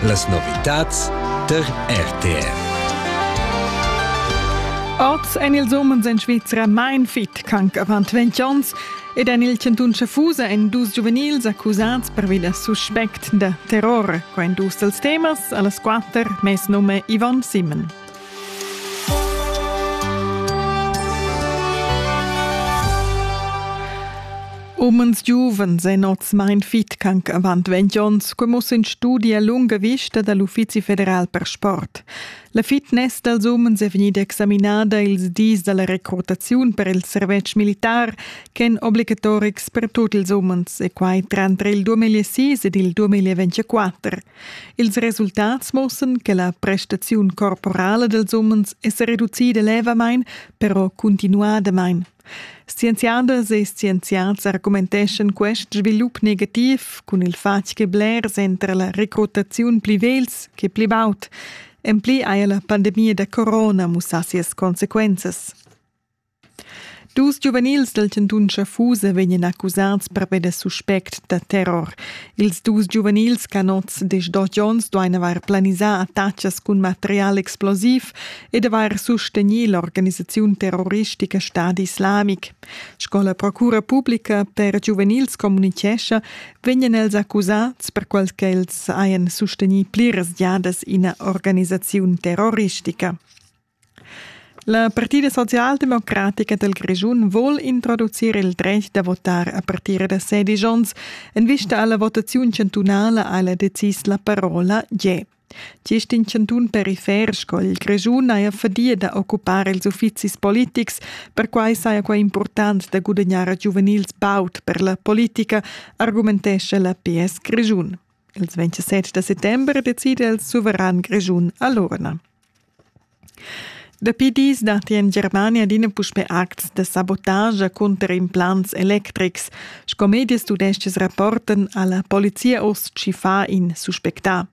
Las novitads der RTR. Oz en ils umens en Svizra mein fit canc avant 20 onns ed en il chantun Schaffhausen en dus giuvenils accusats pervi da suspect da terror. Qua en dus dels temas, a las quatter, mes nume Yvonne Simon. Umens giuvens ein oz mein fit canc avant 20 onns, co muss in studi a lunga vista dall'Uffizi federal per sport. La fitness dals umens è vegnida examinada ils dis dalla recrutaziun per il servetsch militar ch'èn obligatorics per tutti ils umens e quai tranter il 2006 ed il 2024. Ils resultats muossan che la prestaziun corporala dels umens è se reducida levamain, però continuadamain. Scienziadas e scienziats argumenteschan quest svilup negativ cun il fatg che blers entrer la recrutaziun pli vels che pli baud. En pli haja la pandemia da corona mussà sias consequenzas. Dus giuvenils dal chantun Schaffusa vegnan accusads pervi da suspect da terror. Ils dus giuvenils ch'han oz desch-dotg onns duain avair planisà attacas cun material explosiv ed avair sustegnì l'organisaziun terroristica Stadi Islamic. Sco la procura publica per giuvenils communitgescha, vegnan els accusads per qual ch'els hajan sustegnì pliras giadas ina organisaziun terroristica. La Partida socialdemocratica dal Grischun vul introducir il dretg da votar a partire da sedisch onns. En vista alla votaziun chantunala ha ella decis la parola je. Gist in chantun perifer sco il Grischun haja fadia da occupar ils uffizis politics, perquai saja quai impurtant da gudagnar giuvenils baud per la politica, argumentescha la PS Grischun. Il 27 da settember decide il suveran grischun a l'urna. Dapi dis datti en Germania adina puspè acts da sabotage cunter implants electrics, sco mediastudestes rapporten alla Polizia Ostchi fa in suspectà.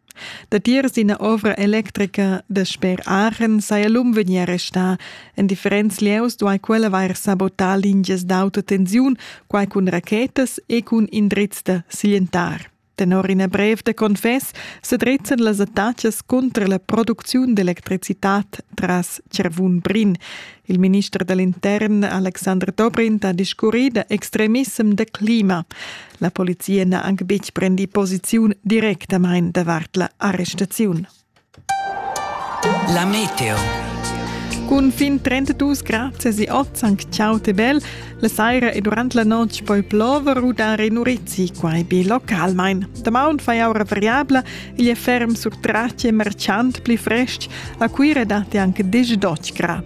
Datiers ina ovra electrica da sper Aachen saja l'um vegnì arrestà. En differents lieus duai quella vair sabotà lingias d'auto tensiun, quai cun rachetas e cun indrizs da siglientar. Tenor ina brev da confess sedrezzan las attacas cunter la producziun d'electricitad tras Cervun-Brin. Il minister da l'intern Alexander Dobrindt ha discurrì da extremissem da clima. La polizia n'ha anc betg prendì posiziun directamain davart la arrestaziun. La meteo. Cun fin 32 grad si oz anc ciao te bel. La saira e durant la notg poi plover u dar in urizi, quai be localmain. Damaun fai aura variabla, igl è ferm sur trace e marciant pli frestg. A Cuira datti anche 10 grad.